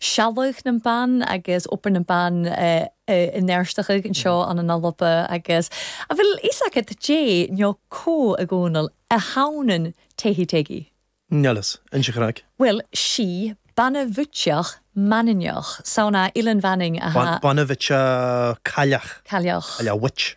sgeulachdan nam ban agus obair nam ban in Fheirsteach an seo ann an Alba agus a bheil fhios agad dè no cò a Chonaill a th' ann an Tehi Tegi. Níl fhios. Inis an craic. Bhuel, 's e bana-bhuidseach Mhanainneach, 's ann à, Oileán Mhanainn, a. Bana-bhuidseach, cailleach. Cailleach. Cailleach, witch.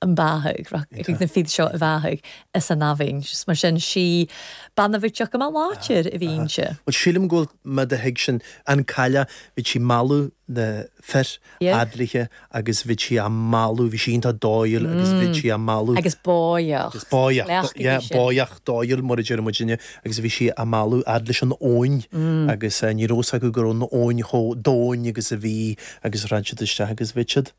an beathaigh, rachadh na fir seo a bhàthadh san abhainn. Is mar sin, 's e bana-bhuidseach gu math làidir a bh' innte. Bhuel, sílim go bhfuil mé do thuig sin. An cailleach, bhí sí mealladh na fir fhad léithe agus bhí sí á mealladh, bhí sí iontach dóighiúil agus bhí sí á mealladh. Agus bòidheach. Agus bòidheach, yeah, bòidheach, dóighiúil mar a deir muid inniu agus bhí sí á mealladh fhad leis an abhainn agus ní raibh fhios acu go raibh an abhainn chomh domhain agus a bhí agus rith siad isteach agus báitheadh iad.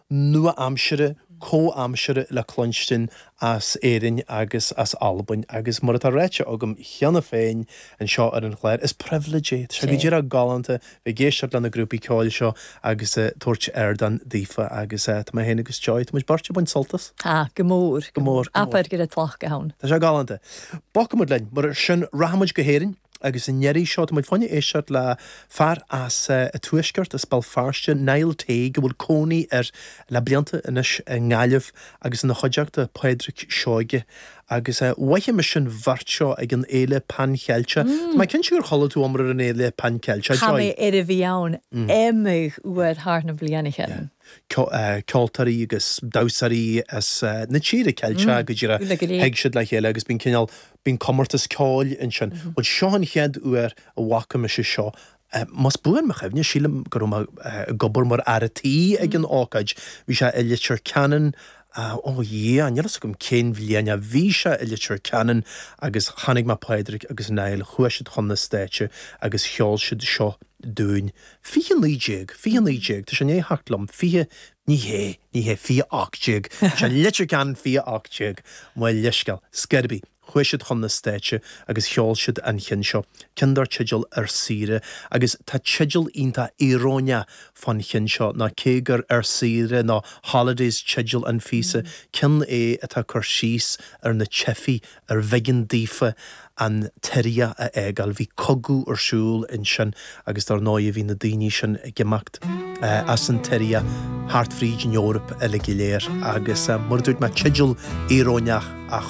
nua-aimsire comhaimseartha le cluinstin as Éirinn agus as Albain agus, mar atá ráite agam cheana féin anseo ar an chlár, is pribhléid é. Tá sé go díreach galánta bheith ag éisteacht le na grúpaí ceoil seo agus ag tabhairt ardán daofa agus tá mé féin agus Joy, tá muid beirt ag baint sult as. Ah, go mór, go mór. Abair gu robh tlachd ann. Tá sé galánta. Bogfaimid linn, mar sin, rachaimid go hÉirinn. Agus an iarraidh seo, tá muid chun éisteacht le fear as an tuaisceart, as Béal Feirste, Niall Teague, a bhfuil cónaí air le blianta anois i nGaillimh agus ina chuideachta, Pádraic Seoige. Agus mhothaigh mise an bheirt seo ag an fhéile Pan Cheilteach. Tá mé cinnte gur chuala tú iomrá ar an fhéile Pan Cheilteach, Joy. Tha mi air a bhith ann, iomadh uair thar nam bliadhnaichean. Ceoltóirí agus damhsóirí as na tíortha Ceilteacha go díreach, thig siad le chéile agus bíonn cineál Bíonn comórtas ceoil ansin. Bhuel, seo an chéad uair a bhfaca mise seo, más buan mo chuimhne, sílim go raibh mé ag obair mar fhear a' tí ag an ócáid. Bhí sé i Leitir Ceanainn, ó a Dhia, níl fhios agam cén bhliain é, bhí sé i Leitir Ceanainn agus chonaic mé Pádraic agus Niall, chuaigh siad chun na stáitse agus cheol siad seo dúinn. Fiche naoi déag, fiche naoi déag, tá sé i ndiaidh theacht liom, fiche, Ní hé, ní hé, fiche ocht déag, is é Leitir Ceanainn fiche ocht déag, mo leithscéal, ar scor ar bith, chuaigh siad chun na stáitse agus cheol siad an ceann seo, ceann dar teideal Ar Saoire, agus tá teideal iontach íoróineach fán cheann seo ná cé gur Ar Saoire nó Holidays teideal an phíosa, ceann é atá ag cur síos ar na teifigh arbh éigean daofa, an tSiria a fhágáil. Bhí cogadh ar siúl ansin agus dár ndóighe bhí na daoine sin ag imeacht as an tSiria thart fríd an Eoraip uilig go léir agus mar a dúirt mé teideal íoróineach ach